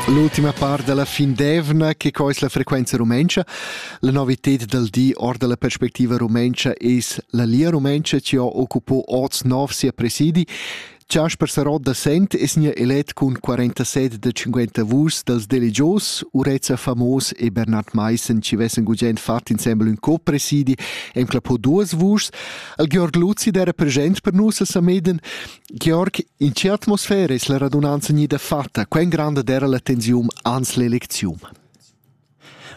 L'ultima part dalla fin d'eivna che cois la frequenza rumentscha. La novited dal di or dalla perspectiva rumentscha es la Lia Rumentscha chi ho occupo oz nov sia presidi. Jasper Sarot da Sent es nia elet cun 47 da 50 vus dals delegios, Urezza Famos e Bernhard Meissen ci vessen gugent fat insembel ün co-presidi, em clapo duas vuschs. Al Georg Luzi d'era present per nus a Sameden. Georg, in tgei atmosfera eis la radunanza gnida fatta? Quen granda era la tensiun ans l'elecziun?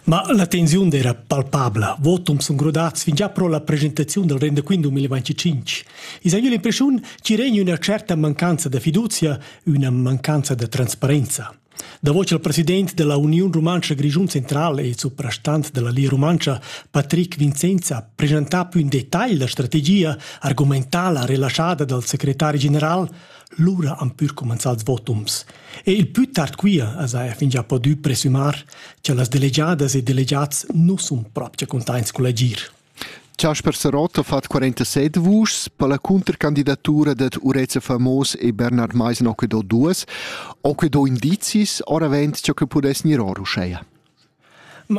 Ma la tensiun era palpabla. Votum sun grodats fingià pro la presentaziun dal rendaquint 2025. I s'ha l'impressiun chi regna üna certa mancanza da fiduzia, üna mancanza da transparenza. Davo cha'l president da la Uniun Rumantscha Grischun Central e suprastant da la Lia Rumantscha, Patrick Vincenza, presentà più in detagl la strategia argumentala relaschada dal secretari general, lura han pür cumanzà ils votums. E il pü tard quia as haja fingià podü presümar cha las delegiadas e delegats nu sun propcha cuntaints cul agir. Chasper Sarott ha fatg 47 vuschs per la cuntercandidatura dad Urezza Famos e Bernard Meisen Ocquido duas. Ocquido indizis oravent ciò che pudess gnir or uscheia.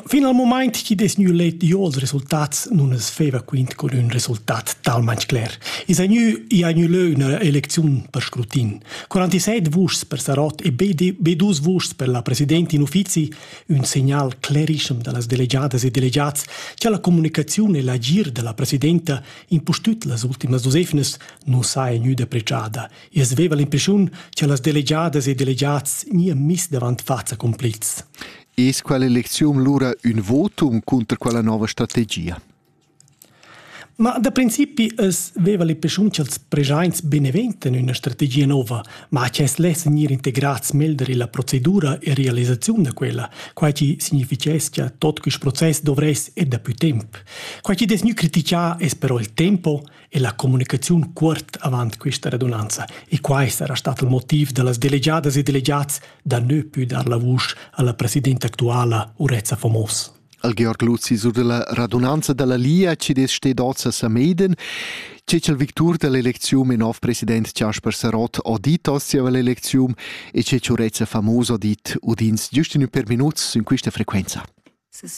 Fin al moment chi dess gnü let io'ls resultats nun es feva quint cun ün resultat talmain cler. I s'ha gnü, i ha gnü lö üna elecziun per scrutin. 47 vuschs per Sarott e be, be dus vuschs per la presidenta in uffizi ün segnal clarischem da las delegiadas e delegiats cha la comunicaziun e l'agir da la presidenta impustüt las ultimas dus efnas nu saja gnüda apreciada. I as veva l'impreschiun cha las delegiadas e delegiats gnia miss davant faza complets. Es quella elecziun lura ün votum cunter quella nouva strategia? Ma da principi as veva le pischun cha'ls preschaints beneventen üna strategia nouva, ma que as less gnir integrats meglder illa procedura e realisaziun da quella, quai chi significheschia tot quist process dovress e dapü temp. Quai chi dess gnü critichà es però il tempo e la comunicaziun cuort avant quista radunanza e quai sarà stat il motiv da las delegiadas e delegats da nö pü dar la vusch a la presidenta actuala Urezza Fomos. al Georg Luzi sur della radunanza dalla Lia ci des ste doza Sameden che il victur dell'elezium e nov president Jasper Sarott auditos sia l'elezium e che ci urezza famoso dit udins giusto in per minuts in questa frequenza.